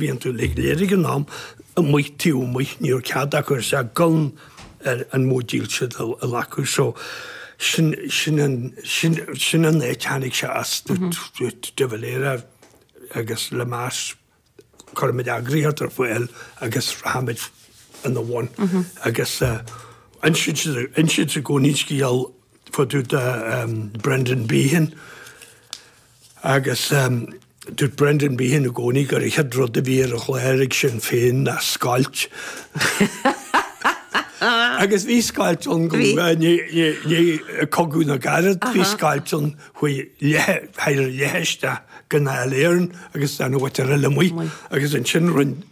Bhíonn tú ag léirigh an am amuigh taobh amuigh ní raibh cead acu ar sea gan an móid dílse a ghlacadh so sin sin an sin sin an éirigh sé as do de Valera agus le meas cuirimid eagraíocht ar fáil agus rachaimid ina bhun agus insint insint i gcónaí scéal faoi dtaobh de Brendan Behan Agus dúirt Brendan Behan i gcónaí gur an chéad rud a bhí ar an chlár ag Sinn Féin ná scoilt. Agus bhí scoilt ann go ndearnadh cogadh na gcarad, bhí scoilt ann chuaigh leath, thar leath isteach go Dáil Éireann agus d'fhan an mhuintir eile amuigh agus ansin rinne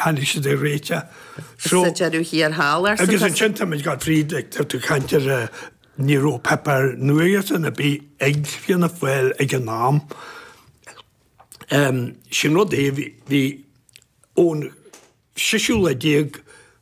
Tháinig siad ag réiteach. So. Sa deireadh thiar thall, arsa Agus ansin táimid ag gabháil fríd tá tú ag caint ar a ní raibh páipéar nuachta ar bith ag Fianna Fáil ag an am. Sin rud eile bhí an toghchán speisialta déag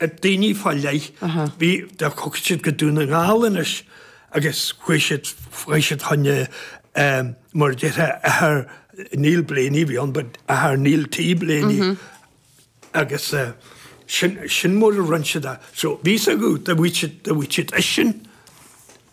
daoine fá leith. Bhí, dá dtiocfadh siad go Dún na nGall anois agus chuaigh siad, chuaigh siad chun na, mar a déarfá athair Neil Blaney a bhí ann, but athair Neil T. Blaney, agus sin, sin mar a rinn siad a, so bhí a fhios agat do bhuail siad, do bhuail siad eisean.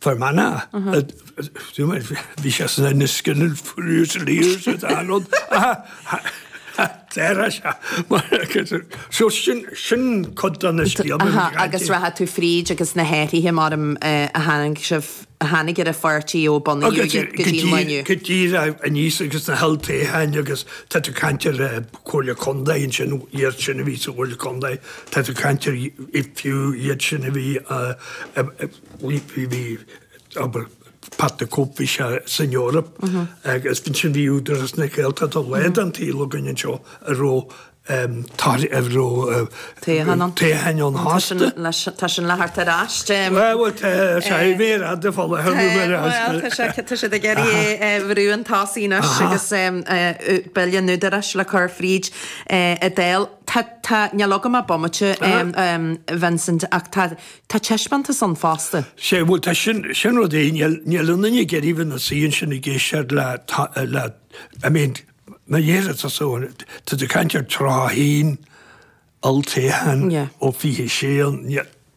Fermanagh. Bhí sé sna Inniskilling Fusiliers sa Seanad. Déarfá sé. So sin cuid de na scéalta a bhí aici. Agus rachadh tú fríd agus na hathruithe mar a tháinig sibh, a tháinig ar an pháirtí ó bunaíodh é go dtí an lá inniu. Go dtí aníos agus na holltoghcháin agus tá tú ag caint ar Chomhairle Contae ansin, iad sin a bhí sa Chomhairle Contae. Tá tú ag caint ar fiú iad sin a bhí bhí abair Pat the Cope bhí sé san Eoraip agus bhí sin bhí Údarás na Gaeltachta le an taobh againn anseo a raibh tar a raibh toghcháin ann fosta. Tá sin le theacht ar ais. Bhuel tá sé ar an mhéar fhada fá láthair nó méar fhada. Tá siad ag iarraidh é a bhrú chun tosaigh anois agus Bille an Údaráis le cur fríd an Dáil. Tá, tá, níl agam ach bomaite, Vincent, ach tá, tá taispeántas ann fosta. Sea, bhuel, tá, sin, sin rud eile, níl, níl aon duine ag iarraidh bheith ina suí ansin ag éisteacht le, le, I mean, mar a déarfá tá so, tá, tá tú ag caint ar toghcháin, olltoghcháin, Yeah. Ó fiche sé, níl.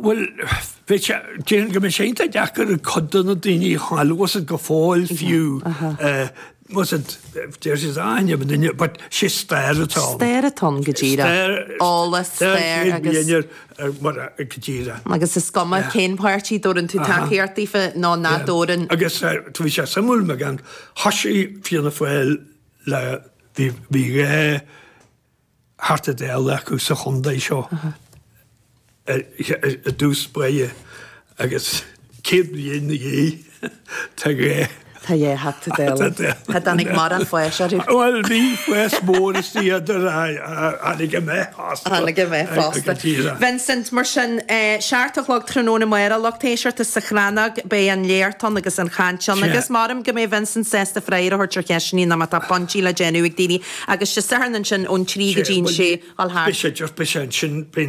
Bhuel, déarfainn go mbeidh sé iontach deacair ag cuid de na daoine a chuala iad go fóill fiú deir siad aithin an duine but is é stair atá ann. Stair atá ann go díreach. Stair. Eolas, stair agus. Stair céad bliain ar mar a go díreach. Agus is cuma cén páirtí dtabharann tú tacaíocht daofa nó nach dtabharann. Agus tá bhí sé suimiúil mar go thoisigh Fianna Fáil le bhí bhí dhá Theachta Dála acu sa chondae seo i dtús báire agus céad bliain na dhiaidh tá dhá. tá dhá Theachta Dála. Ní tháinig morán fáis orthu. Bhuel bhí fás mór is féidir a tháinig meath fosta. Tháinig meath fosta. Vincent, mar sin seacht a chlog tráthnóna amárach a lucht éisteachta sa Chrannóg beidh an léacht ann agus an chaint ann agus creidim go mbeidh Vincent sásta freagra a thabhairt ar cheisteannaí nó má tá pointí le déanamh ag daoine Agus Dé Sathairn ansin ón trí go dtí an sé, a ghabháil thart.